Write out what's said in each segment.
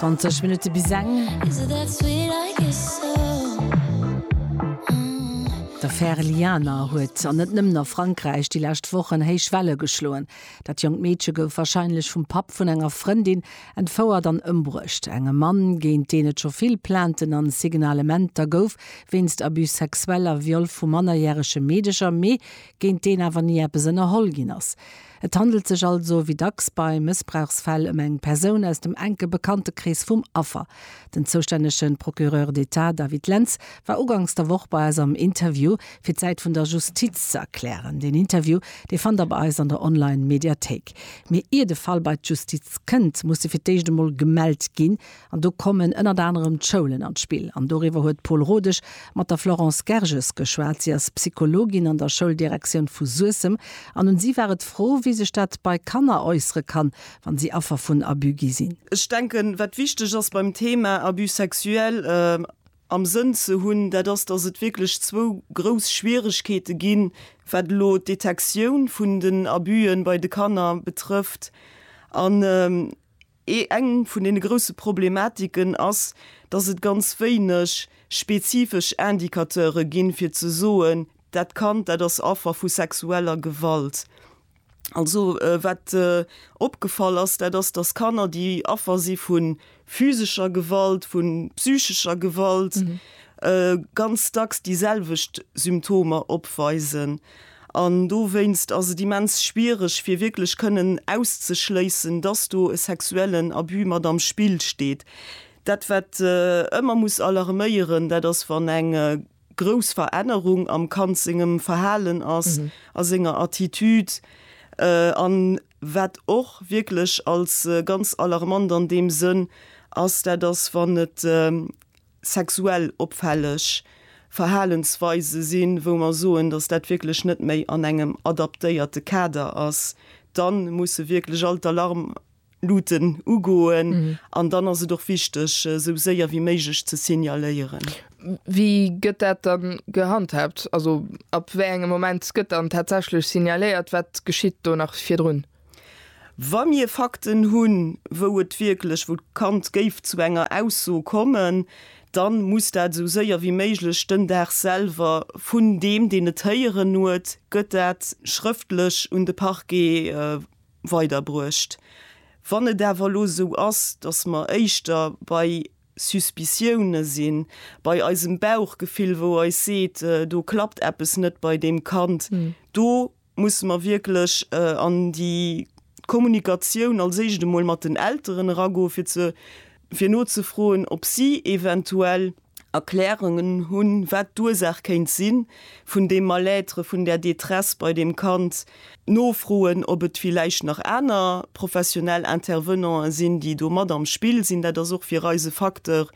20 Minutte bis eng. D'Affär Lianer huet an net nëmmen a Frankräich déi lescht Wochen héich Welle geschloen. Dat jonkt Meedche gouf warscheinlech vum Papp vun enger Frëndin entfouert an ëmbruecht. Engem Mann, géint deen et scho vill Plainten an Signalementer gouf wéinst Abus sexuel a Viol vu mannerjärege Meedecher, mee géint deen awer ni eppes ënnerholl ginn ass. Et handelt sech also, wéi dacks bei Mëssbrauchsfäll, ëm eng Persoun aus dem enke Bekanntekrees vum Affer. Den zoustännege Procureur d'Etat David Lentz war ugangs der Woch bei eis am Interview, fir d'Säit vun der Justiz ze erklären. Deen Interview, dee fannt der bei eis an der Online-Mediathéik. Mee ier de Fall bei d'Justiz kënnt, muss e fir d'éischt emol gemellt ginn, An do kommen ënnert anerem d'Schoulen an d'Spill. An doriwwer huet d'Paule Rodesch mat der Florence Gerges geschwat. Si ass Psychologin an der Schouldirektioun vu Suessem an un si war et d'Fro, wéi sech dat bei Kanner äussere kann, wann si Affer vun Abus gi sinn. Ech denken, wat wichteg ass beim Thema Abus sexuel am Sënn ze hunn, dat ass, dass et wierklech zwou grouss Schwieregkeete ginn, wat elo d'Detektioun vun den Abuse bei de Kanner betrëfft an, Ee eng vun deene grousse Problematiken ass, dass et ganz wéineg spezifesch Indicateure ginn, fir ze soen, dat Kand, dat ass Affer vu sexueller Gewalt. Also wat opgefall ass, dat ass, dass Kanner, déi Affer si vu physescher Gewalt, vu psychescher Gewalt, ganz dacks déi selwecht Symptomer opweisen. An dowéinst ass et immens schwiereg, fir wierklech kënnen auszeschléissen, dass do e sexuellen Abus mat am Spill steet. Dat, wat ëmmer muss alarméieren, dat ass, wann eng grouss Verännerung am Kand sengem Verhalen ass, a senger Attitude. An wat och wierklech als ganz alarmant an deem Sënn ass, dat ass, wann et sexuell opfälleg Verhalensweise sinn, wou mer soen, dass dat wierklech net méi an engem adaptéierte Kader ass, dann musse wierklech all d'Alarmluten ugoen an dann ass et och wichteg, esou séier wéi méiglech ze signaléieren. Wéi gëtt dat dann gehandhaabt? Also ab wéi engem Moment gëtt dann tatsächlech signaléiert? Wat geschitt do nach virdrun? Wa mir Fakten hunn, wou et wierklech, wou d'Kand géif zu enger Ausso kommen, dann muss dat esou séier wéi méiglech den Dag selwer vun deem, deen et héieren huet, gëtt dat schrëftlech un de Parquet weiderbruecht. Wann et awer elo esou ass, dass mer éischter bei Suspiciounen sinn, bei eisem Bauchgefill, wou eis seet, do klappt eppes net bei deem Kand, do Musse mer wierklech an déi Kommunikatioun als éischt emol mat den Elteren eragoen, fir ze, fir nozefroen, ob si eventuell Erklärungen hunn, wat d'Ursaach kéint si vun deem Mal-être, vun där Détresse bei deem Kand? Nofroen, ob et villäicht nach aner professionell Intervenanten sinn, déi do mat am Spill sinn. Dat ass och fir eis e Facteur,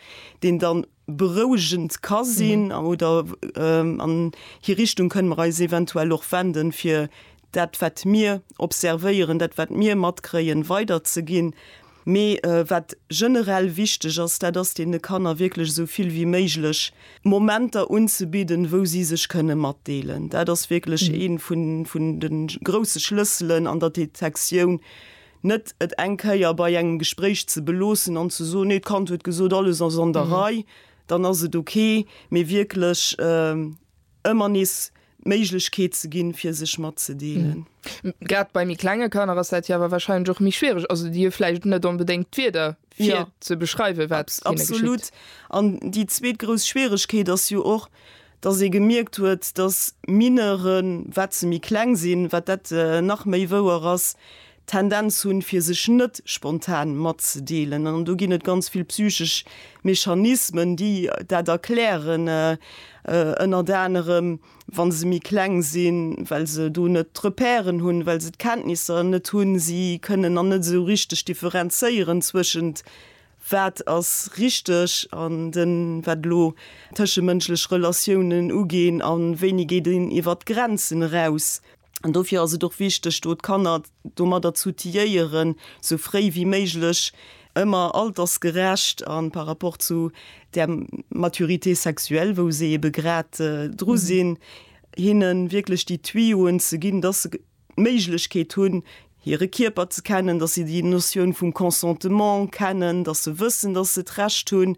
deen dann berouegend ka sinn oder an hir Richtung kënne mer eis eventuell och wenden, fir dat wat mir observéieren, dat wat mir matkréien, weiderzeginn. Mee wat generell wichteg ass, dat ass deene Kanner wierklech esou vill wéi méiglech Momenter unzebidden, wou si sech kënne matdeelen. Dat ass wierklech ee vun de grousse Schlësselen an der Detektioun, Net et eng Kéier bei engem Gespréich ze beloossen an ze soen, nee, d'Kand huet gesot, alles ass an der Rei, dann ass et ok, mee wierklech ëmmer nees d'Méiglechkeet ze ginn, fir sech matzedeelen. Grad bei méi klenge Kanner ass dat jo awer warscheinlech och méi schwiereg. Also déi hu vläicht net onbedéngt d'Wierder, fir ze beschreiwen, wat hinne geschitt. Absolut. An déi zweet grouss Schwieregkeet ass jo och, Dass ee gemierkt huet, dass Mineuren, wat se méi kleng sinn, wat dat nach méi wouer ass, d'Tendenz hunn, fir sech net spontan matzedeelen. An do ginn et ganz vill psychesch Mechanismen, déi dat erklären, ënnert anerem, wa se méi kleng sinn, well se do net d'Repèren hunn, well se d'Kenntnisser net hunn. Si kënnen nach net esou richteg differenzéieren zwëschent Wat ass richteg an den, wat elo tëschemënschlech Relatiounen uginn, an wéini geet een iwwert d'Grenzen eraus? An dofir ass et och wichteg, do d'Kanner domadder z'outiliéieren, sou fréi wéi méiglech, ëmmer altersgerecht an par rapport zu där Maturité sexuelle, wou se ebe grad dru sinn, hinnen wierklech déi Tuyauxen ze ginn, dass se, d'Méiglechkeet hunn, hire Kierper ze kennen, dass se déi Notioun vum Consentement kennen, dass se wëssen, dass se d'Recht hunn,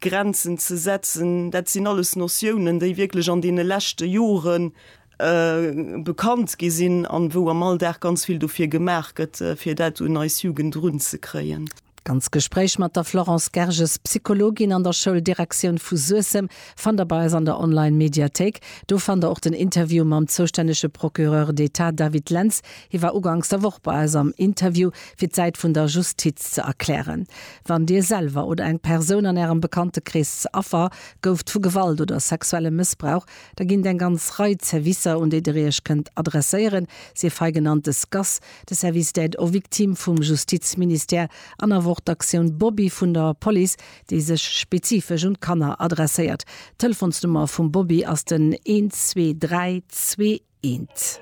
Grenzen ze setzen. Dat sinn alles Notiounen, déi wierklech an deene leschte Jore bekannt gi sinn an wou am Alldag ganz vill dofir gemaach gëtt, fir dat un eis Jugend erunzekréien. D'ganz Gespréich mat der Florence Gerges, Psychologin an der Schouldirektioun vu Suessem, fannt der bei eis an der Online-Mediathéik. Do fannt der och den Interview mam zoustännege Procureur d'Etat David Lentz. Hie war ugangs der Woch bei eis am Interview, fir d'Säit vun der Justiz ze erklären. Wann Dir selwer oder eng Persoun an Ärem Bekanntekrees ze Affer gouft vu Gewalt oder sexuellem Mëssbrauch, da ginn et eng ganz Rei Zerwisser, un déi der Iech kënnt adresséieren, sief hei genannt des gas, De Service d'Aide aux Victimes vum Justizministère an awer och d'Aktioun Bobby vun der Police, déi sech spezifesch un d'Kanner adresséiert. D'Telefonsnummer vum Bobby ass den 1232 1.